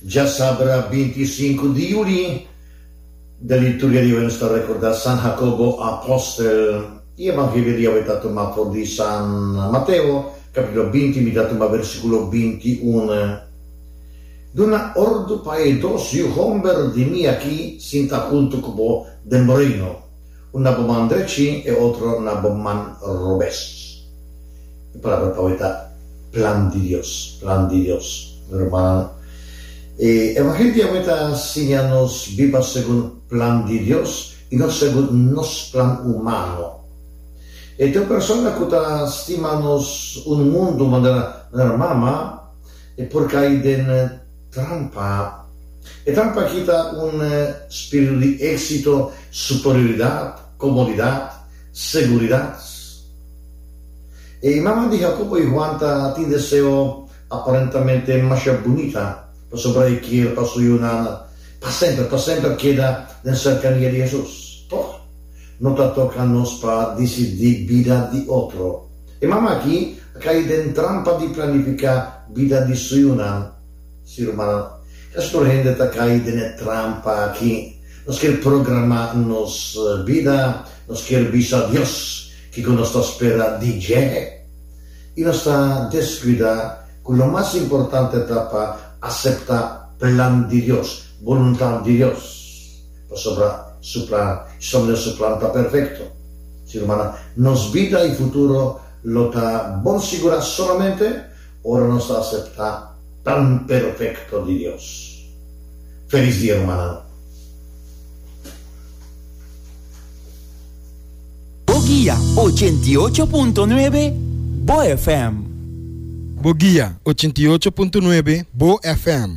Dja sabra binti i sinku di yuli, den liturgia di awe nos ta rekordá San Jakobo apòstel, i Evangelio di awe ta tumá for di San Mateo, kapítulo binti, mi ta tumá versíkulo binti i unu. Duna òrdu pa e dos yu hòmber di mi aki sintá huntu ku bo den bo reino. Un na bo man drechín, e otro na bo man robes. E palabra pa awe ta plan di Dios, plan di Dios. Hermano, e Evangelio di awe ta siña nos biba segun plan di Dios i no segun nos plan humano. E ta un persona ku ta stima nos un mundu manera nan mama e por kai den. Trampa. E trampa aki ta un spiritu di éksito, superioridat, komodidat, seguridat. E mama di Jakobo i Juan ta tin deseo aparentamente masha bunita, pasobra e kier pa su yunan pa semper, pa semper keda den serkania di Hesus. Tok, no ta toka nos pa disidí bida di otro. E mama aki a kai den trampa di planifiká bida di su yunan. Sí, rumannan, ka stor hende ta kai den e trampa aki. Nos kier programá nos bida, nos kier bisa Dios kiko nos ta spera di dje. I nos ta deskuidá ku lo mas importante ta pa aseptá plan di Dios, boluntat di Dios. Pasobra su plan, Jesucristo mira su plan ta perfecto. Si, rumannan, nos bida y futuro lo ta bon sigura solamente ora nos ta acepta plan perfecto di Dios. Feliz dia, rumannan. Bo guia ochenta i ocho punto nuebe Bo FM. Bo guia ochenta i ocho punto nuebe Bo FM.